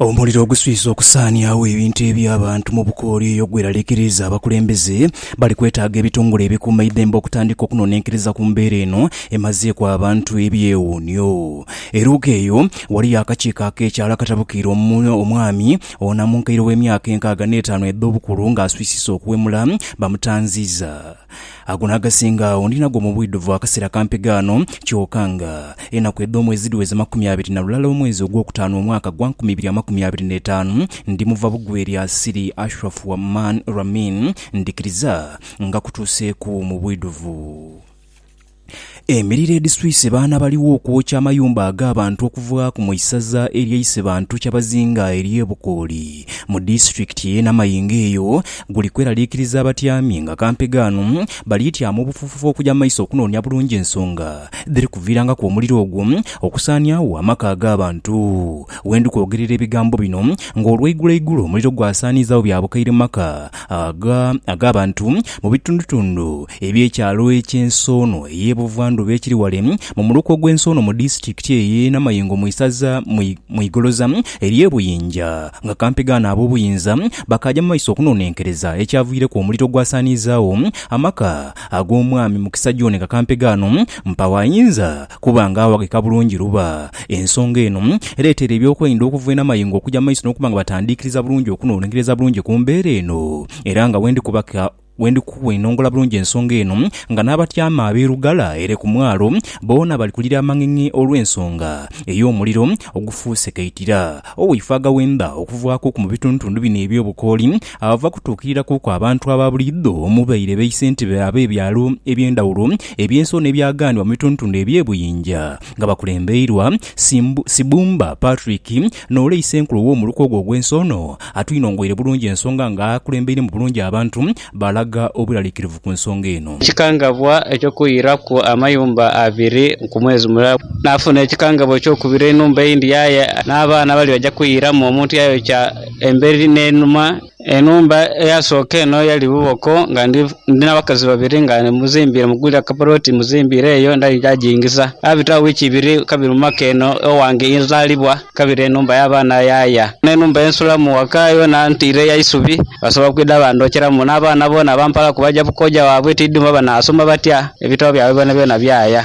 Omuliro oguswise okusaaniagho ebintu eby'abantu mu bukooli eyo gweraliikiriiza abakulembeze. Bali kwetaaga ebitongole ebikuuma eidhembe okutandika okunonenkeriza ku mbeera eno emazeeku abantu ebyewuunhio. E Luuka eyo waliyo akakiiko ak'ekyalo akatabukiire omwami onamunkaire ow'emyaka enkaaga n'etaanu edh'obukulu ng'aswisisa okuwemula. Bamutanziiza. Ago n'agasinga agho ndi nago mu bwidhuvu akaseera kampi ghano, kyoka nga enaku edh'omwezi dhiweze makumi abiri na lulala omwezi ogwokutaanu omwaka gwa nkumi ibiri amakumi abiri n'etaanu, ndi muva bugwi eri Asiri Ashraf wa Man Ramin, ndhikiriza nga kutuuseeku mu bwidhuvu. Emiriro edhiswise baana baligho okwokya amayumba ag'abantu okuvaaku mu isaza erya Isebantu Kyabazinga ery'e Bukooli mu disitulikiti y'e Namayingo eyo guli kweraliikiriza abatyami nga kampegaano bali tyama obufuufufu okuja mu maiso okunoonia bulungi ensonga dhiri kuviirangaku omuliro ogwo okusaaniagho amaka ag'abantu. Wendi kwogerera ebigambo bino ng'olweigulo eigulo omuliro gwasaaniizaagho bya bukaire mu maka aga ag'abantu mu bitundutundu eby'ekyalo eky'ensi ono ey'e Buvandhuba ekiri ghale mu muluka ogw'ensi ono mu disitikiti ey'e Namayengo mu isaza mu igoloza ery'e Buyinja nga kampegaano ab'obuyinza bakaaja mu maiso okunonenkereza ekyaviireku omuliro ogwasaaniizaagho amaka ag'omwami Mukisa John nga kampegaano mpawo ayinza Kuba nga awaghika bulungi luba. Ensonga eno ereetera eby'okwerinda okuva eno amayengo okuja mu maiso n'okuba nga batandiikiriza bulungi okunoononkereza bulungi ku mbeera eno. Era nga bwendi kubaka bwendi kukuenongola bulungi ensonga eno nga n'abatyaama ab'e Lugala ere ku mwalo boona bali kulira amang'eng'e olw'ensonga ey'omuliro ogufuuse kaitira oweifaaga wendha okuvaaku ku mu bitundutundu bino eby'obukooli Ava kutuukirira kuku abantu aba buliidho omubaire baisentebe ab'ebyalo eby'endhawulo eby'ensi ono ebyagaanibwa mu bitundutundu eby'ebuyinja nga bakulembeirwa Sibumba Patrick n'ole Isenkulu ow'omuluka ogwo ogw'ensi ono atwinongoire bulungi ensonga nga akulembeiremu bulungi abantu balaga obweralikirivu ku nsonga eno. Ekikangabwa eky'okuyiiraku amayumba abiri ku mwezi mulala. Naafuna ekikangabwa eky'okubiri enhumba eyindhi yaaya n'abaana abali baja kuyiiramu omuntu yayokya. Emberi n'enhuma. Enhumba eyasooka eno yali buboko nga ndi n'abakazi babiri nga muzimbiire, mugwire akapulooti muzimbiire eyo ndali nja giingiza. Yaabitagho wiiki ibiri kabiri mu maka eno ewange ye nzaalibwa, kabiri enhumba y'abaana yaaya. N'enhumba ye nsulamu ghaka yoona ntiire ya isubi, basobola kwidha bandhokyeramu. N'abaana boona bampalaku baja ku kooja waabwe, tiidhi mba banaasoma batya, ebitabo byabwe byonabyona byaya.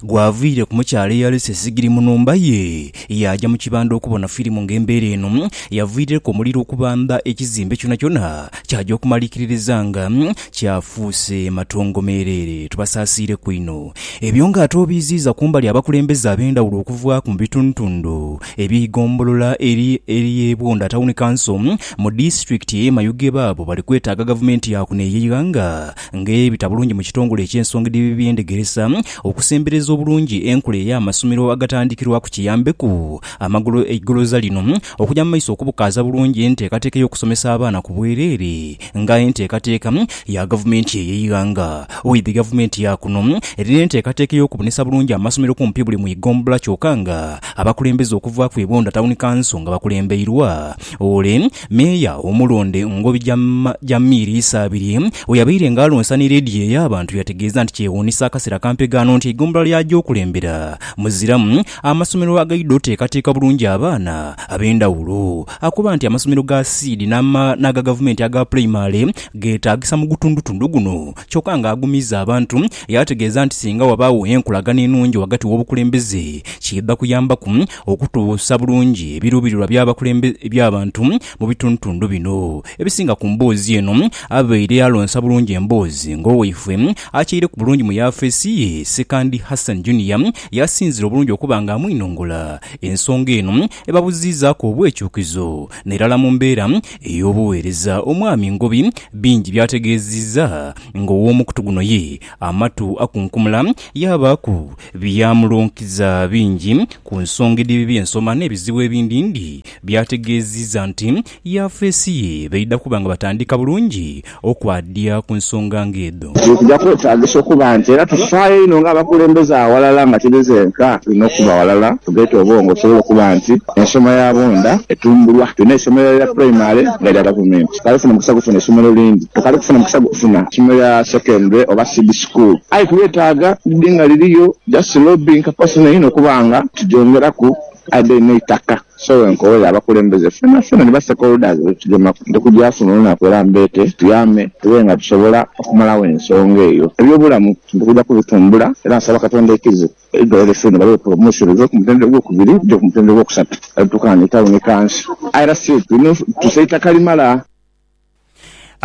Gwavaire ku mukyala eyalese sigiri mu nhumba ye, yaaja mu kibanda okubona firimu ng'embeera eno yavaaireku omuliro okubamba ekizimbe kyonakyona kyaja okumalikiririza nga kyafuuse matongo meereere. Tubasaasiireku inho. Ebyo ng'ate obiiziiza ku mbali abakulembeze ab'endhawulo okuvaaku mu bitundhutundhu eby'eigombolola ery'e Bwunda Town Council mu disitulikiti ey'e Mayuge baabo bali kwetaaga gavumenti yaakuno ey'eighanga ng'ebita bulungi mu kitongole eky'ensonga edh'eby'endhegeresa okusembereza obulungi enkola ey'amasomero agatandikirwaku kiyambeku amagulu eigoloza lino okuja mu maiso okubukaaza bulungi enteekateeka ey'okusomesa abaana ku bwereere nga enteekateeka ya gavumenti ey'eighanga. Oidhi gavumenti ya kuno erina enteekateeka ey'okubonesa bulungi amasomero kumpi buli mu igombola kyoka nga abakulembeze okuva ku Ebonda Town Council nga bakulembeirwa Ole, meeya omulonde mu ngobi ja, ja miiri isaabiri, bwe yabaire nga alonsa ni leediyo ey'abantu, yategeeza nti kyewuunisa akaseera kampe ghano nti eigombolola ly'aja okulembera muziramu amasomero agaidha oteekateeka bulungi abaana ab'endhawulo. Akoba nti amasomero ga Seed n'ama, n'aga Gavumenti aga pulayimale geetaagisa mu gutundutundu guno kyokka nga agumizza abantu yaategeeza nti singa wabaagho enkolagana enungi ghagati w'obukulembeze kiidha kuyambaku okutuusa bulungi ebiruubirirwa by'abakulembeze eby'abantu mu bitundutundu bino ebisinga ku mboozi eno. Abaire alonsa bulungi emboozi ng'owaifwe akyaireku bulungi mu yaafeesi ye, Sekandi Hassan Junior yaasinzira obulungi okuba nga amwinongola ensonga eno ebabuziizaaku obwekyukizo n'erala mu mbeera ey'obuweereza. Omwami Ngobi bingi by'ategeezizza ng'owoomukutu guno ye amatu akunkumula yaabaaku Byamulunkiza bingi ku nsonga edh'ebibi by'ensoma n'ebizibu ebindindi. Byategeezizza nti yafeesi ye baidha kuba nga batandika bulungi okwadiya ku nsonga ng'edho. Kino kija kwetaagisa okuba nti era tufaayo inho ng'abakulembeze aghalala nga tiri zenka tulina okuba ghalala tugeeta obwongo tusobole okuba nti ensoma ya bonda etumbulwa. Tulina eisomero lya Primary nga lya Gavumenti. Tukali kufuna mukisa gufuna isomero lindi. Tukali kufuna mukisa gufuna isomero lya Secondary oba Seed School. school aye twetaaga lide nga liriyo just lobbying capacity inho okuba nga tugyongeraku aye then n'eitaka so wenkowere abakulembeze fena fena ni ba stakeholders betugemaku nti kugyafuna olunaku era mbeete tuyambe tube nga tusobola okumalawo ensonga eyo. Eby'obulamu ndi kugya kubitumbula era nsaba Katonda ekize eidwaliro liffe ni balighe promotion live ku mutendera ogwokubiri lije ku mutendera ogwokusatu era tukaane town kanso aye era still tulina okutusa eitaka limala.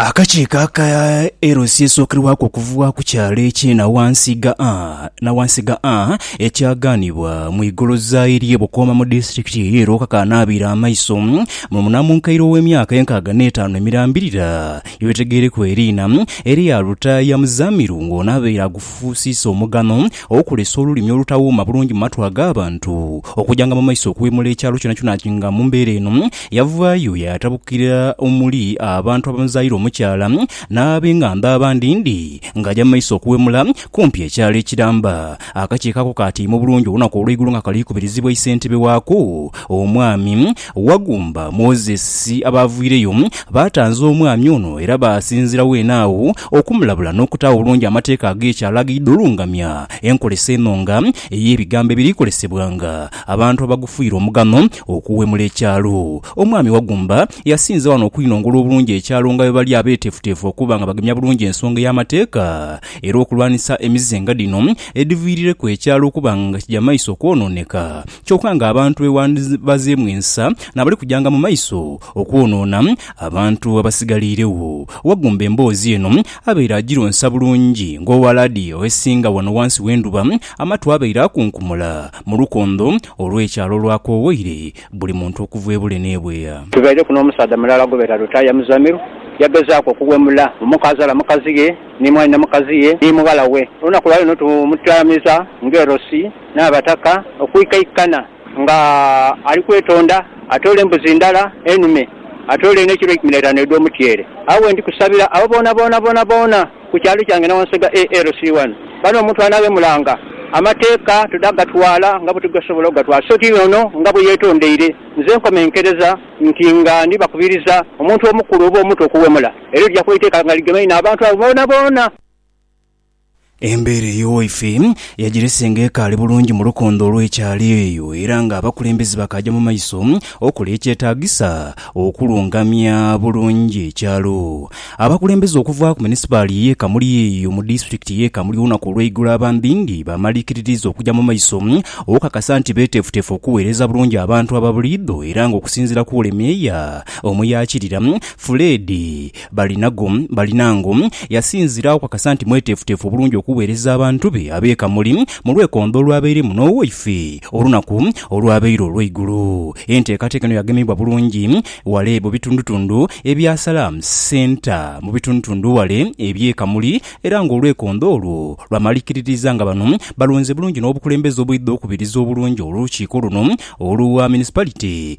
Akakiiko aka LC esookerwaku okuvugha ku kyalo ekye Nawansi gha A, Nawansi gha A ekyagaanibwa mu igoloza ery'e Bukooma mu disitulikiti y'e Lwoka kaanaabiire amaiso mu munamunkaire ow'emyaka enkaaga n'etaanu emirambirira yebitegeereku eriina erya Lutaaya Muzamiru ng'ono abaire agufuusiisa omugano okulesa olulimi olutawuuma bulungi mu matu ag'abantu okujanga mu maiso okuwemula ekyalo kyonakyona nga mu mbeera eno Yavaayo yaatabukira omuli abantu abamuzaire omukyala n'ab'engambo abandi ndi ng'aja mu maiso okuwemula kumpi ekyalo ekiramba. Akakiiko ako kaatiima obulungi olunaku olw'eigulo nga kali kubirizibwa isentebe waako, Omwami Wagumba Moses. Abaaviireyo baatanza omwami ono era baasinziira weene agho okumulabula n'okutaagho obulungi amateeka ag'ekyalo agaidha olungamya enkolesa eno nga ey'ebigambo ebiri kozesebwa nga abantu abagufuire omugano Okuwemula ekyalo. Omwami Wagumba yasinze wano okwinongola obulungi ekyalo nga bwebali abetefutefu okuba nga bagemya bulungi ensonga ey'amateeka era okulwanisa emize nga dhino edhiviirireku ekyalo okuba nga kija maiso okwonooneka kyoka nga abantu bwebandibazeemu ensa nabali kujanga mu maiso okwonoona abantu abasigaliiregho. Wagumba emboozi eno abaire agironsa bulungi ng'owa laadiyo esinga wano wansi w'endhuba amatu abaire akunkumula mu lukondho olw'ekyalo olwakoowoire buli muntu okuva ebule n'ebweya. Tubaireku n'omusaadha mulala gubeera Lutaaya Muzamiru, yagezaaku okuwemula omuka azaala mukazi ghe, ni mwanhina mukazi ye, ni mughala we. Olunaku lwa leero tumutyamiza ng'erosi n'abataka okwikaikana nga ali kwetonda atoole embuzi ndala enume, atoole n'ekilo eikumi n'eitaanu edh'omutyeere. Agho we ndi kusabira abo boonaboona boonaboona Ku kyalo kyange na wansi gha ALC wano, bano omuntu anaghemulanga amateeka toda gatwala nga bwetugasobola ogatwala so ti ono nga bweyetondeire. Nze nkomenkereza nti nga ndi bakubiriza omuntu omukulu oba omuto okuwemula era lija kuba iteeka nga ligemeine abantu abo boonaboona. Embeera eyo waife yagirese nga ekaali bulungi mu lukondo olw'ekyalo eyo era nga abakulembeze bakaaja mu maiso okola ekyetaagisa Okulungamya bulungi ekyalo. Abakulembeze okuva ku munisipaali ye Kamuli eyo mu disitulikiti ye Kamuli olunaku olweigulo abambingi bamalikiririza okuja mu maiso okukakasa nti betefutefu okuwereza bulungi abantu ababuliidho era nga okusinzira ku Wuli Meeya omuyakirira Fred Balinago, Balinango, yasinzira oku akasa nti mweteefuteefu bulungi okuweereza abantu be ab'e Kamuli mu lwekondo olwabairemu n'owaife olunaku olwabaire olw'eigulo. Enteekateeka eno yagemebwa bulungi wale mu bitundutundu ebya Salaam Centre mu bitundutundu wale eby'e Kamuli era ng'olwekondo olwo lwamalikiririza nga bano balonze bulungi n'obukulembeze obwidha okubiriza obulungi olukiiko luno olwa Municipality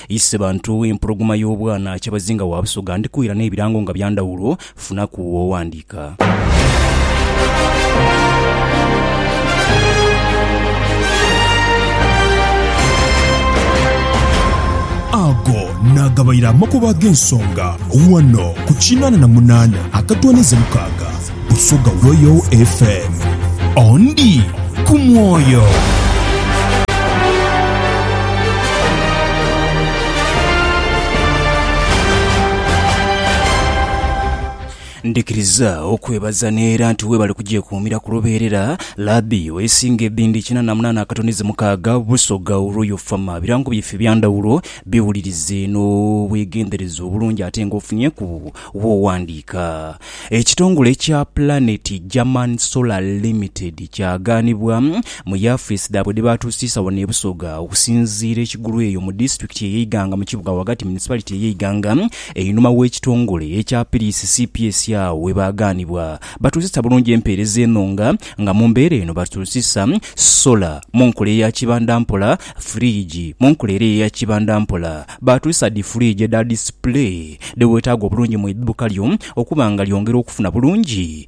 Ise bantu empologoma y'obwana Kyabazinga wa Busoga ndikuwira n'ebirango nga bya ndhawulo, funaku w'owandiika. Ago naagabaire amakubo ag'ensonga ghano ku kinana na munana akatwaniza mukaaga. Busoga Royal FM. Ondi ku mwoyo. Ndikiriza okwebaza neera nti webale kugyekuumira ku lubeerera Labi wesinga ebindi kina na munana akatonize mukaaga Busoga Royal Farm birango byaife ebyandawulo biwulirize n'obwegendereza obulungi ate nga ofunye ku Bw'oghandiika, ekitongole ekya Planet German Solar Limited kyagaanibwa mu yafeesi dhaabwe dhe baatuusiisa wano e Busoga okusinziira e Kigulu eyo mu disitulikiti eye Iganga mu kibuga ghagati municipality eye Iganga einhuma w'ekitongole ekya Piris cps agho we baagaanibwa batuusisa bulungi empeereza eno nga nga mu mbeera eno batuusisa solar mu nkola eya kibandampola, fridge, mu nkola era eya kibandampola. Baatwisa dhi fridge edha display dhewetaaga obulungi mu idhuuka lyo okuba nga lyongera okufuna bulungi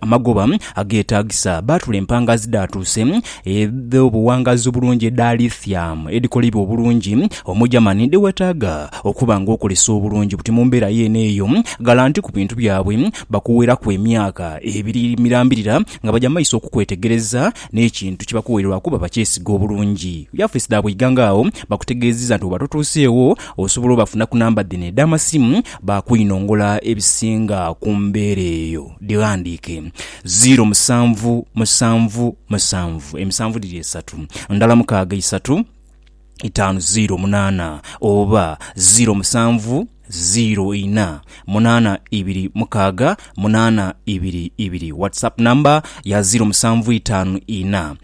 amagoba ageetaagisa. Baatula empangaazi dhaatuuse edh'obuwangaazi obulungi edha lithium edhikolebwa obulungi omu Germany dhewetaaga okuba nga okolesa obulungi buti mu mbeera yeene eyo. Galanti ku bintu byabwe bakuweraku emyaka ebiri mirambirira nga baja maiso okukwetegereza N'ekintu kye bakuwaire lwa kuba bakyesiga obulungi. Yafeesi dhaabwe eighanga agho bakutegeezizza nti bw'oba totuuseegho osobola obafuna ku namba dhino edh'amasimu baakwinongola ebisinga ku mbeera eyo. Dhighandiike, Ziiro musanvu musanvu musanvu emisanvu dhiri esatu, ndala mukaaga isatu, itaanu ziiro munaana oba ziiro musanvu ziiro ina munaana ibiri mukaaga munaana ibiri ibiri. Whatsapp number ya ziiro musanvu itaanu ina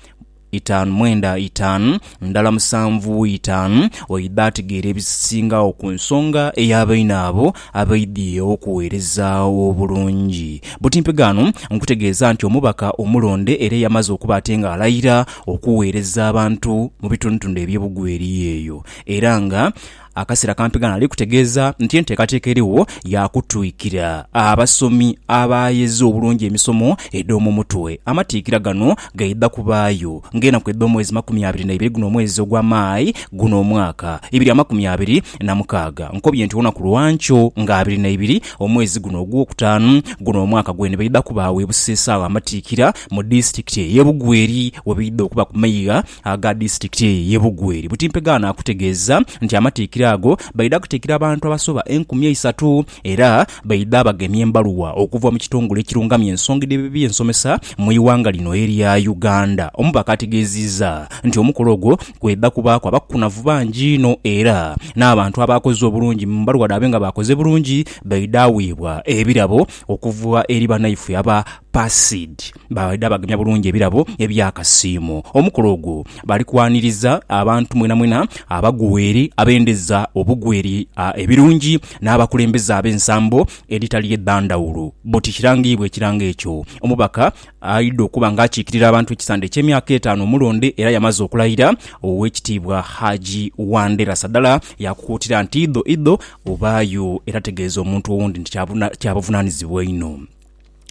itaanu mwenda itaanu ndala musanvu itaanu. Oidha ategeera ebisingagho ku nsonga ey'abaina abo abaidhie okuweereza obulungi. Butimpegaano nkutegeeza nti omubaka omulonde era eyamaze okuba ate nga alayira, okugheereza abantu mu bitundutundu eby'ebugwa eri eyo, era nga akaseera kampi ghano ali kutegeeza nti enteekateeka erigho ya kutwikira abasomi abaagheza obulungi emisomo edh'omu mutwe. Amatikkira gano gaidha kubaayo ng'enaku edh'omwezi makumi abiri na ibiri guno omwezi ogwa May guno omwaka ibiri amakumi abiri na mukaaga. Nkobye nti olunaku lwa nkyo nga abiri na ibiri omwezi guno ogw'okutaanu guno omwaka gwene baidha kubaagho e Buseesa agho amatikkira Mu disitulikiti ey'e Bugweri webaidha okuba ku maigha aga disitulikiti eyo ey'e Bugweri, Butimpega ano akutegeeza nti amatikkira ago baidha kutikkira abantu abasoba enkumi eisatu era baidha bagemya embaluwa okuva mu kitongole ekirungamya ensonga edh'eby'ensomesa mu ighanga lino erya Uganda. Omubaka ategeeziiza nti omukolo ogwo kwidha kubaaku abakunavu bangi inho era n'abantu abaakoze obulungi mu mbaluwa dhaabwe nga baakoze bulungi baidha weebwa ebirabo okuva eri banaifwe aba Pasid baidha bagemya bulungi ebirabo eby'akasiimo. Omukolo ogwo bali kwaniriza abantu mwenamwena abagweere, abendeza obugweere ebirungi n'abakulembeze ab'ensambo edhitali edha ndhawulo. Boti kirangiibwa ekirango ekyo omubaka aidha okuba nga akiikirira abantu ekisande eky'emyaka etaanu omulonde era yamaze okulayira Owekitiibwa Haji Wandera Sadala yakukuutira nti idho idho obaayo era tegeeza omuntu owundi nti kyabuvunanizibwa inho.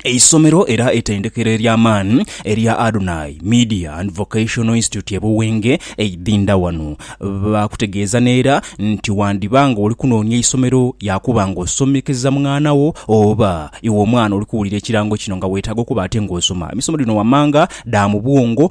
Eisomero era eitendekero ery'amaani erya Adonai Media and Vocational Institute e Buwenge eidhindha wano. Baakutegeeza n'era nti wandiba nga oli kunoonia isomero yaakuba nga osomekeza mwana wo oba iwe omwana oli kuwulira ekirango kino nga weetaaga okuba ate ng'osoma emisomo dhino wammanga dha mu bwongo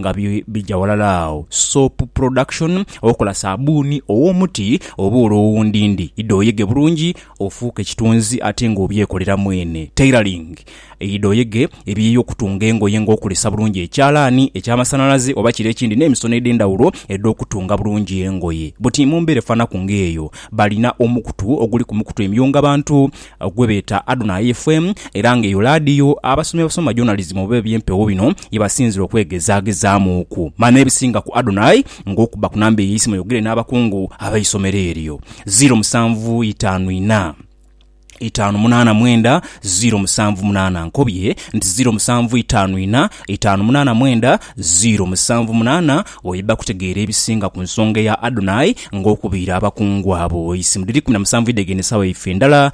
nga bi bigya ghalala agho, soap production, okola sabuuni ow'omuti oba olw'owundindi, idha oyege bulungi ofuuke ekitunzi ate nga obyekolera mwene, tailoring, idha oyege ebiyi okutunga engoye nga okozesa bulungi ekyalaani eky'amasanhalaze oba kire ekindi n'emisono edh'endhawulo edh'okutunga bulungi engoye. Buti mu mbeera efanaku ng'eyo, balina omukutu oguli ku mikutu emyunga bantu gwe beeta Adonai FM era nga eyo laadiyo abasomi abasoma journalism oba eby'empewo bino ye basinzira okwegezaagezaamuuku. Mala n'ebisinga ku Adonai ng'okubba ku namba eyo eisimu oyogere n'abakungu ab'eisomero eryo. Ziiro musanvu itaanu ina, itaanu munaana mwenda ziiro musanvu munaana. Nkobye nti ziiro musanvu itaanu ina, itaanu munaana mwenda ziiro musanvu munaana bw'oidha kutegeera ebisinga ku nsonga eya Adonai ng'okubiira abakungu abo eisimu. Dhiri kumi na musanvu idhegenda esaawa yaife endala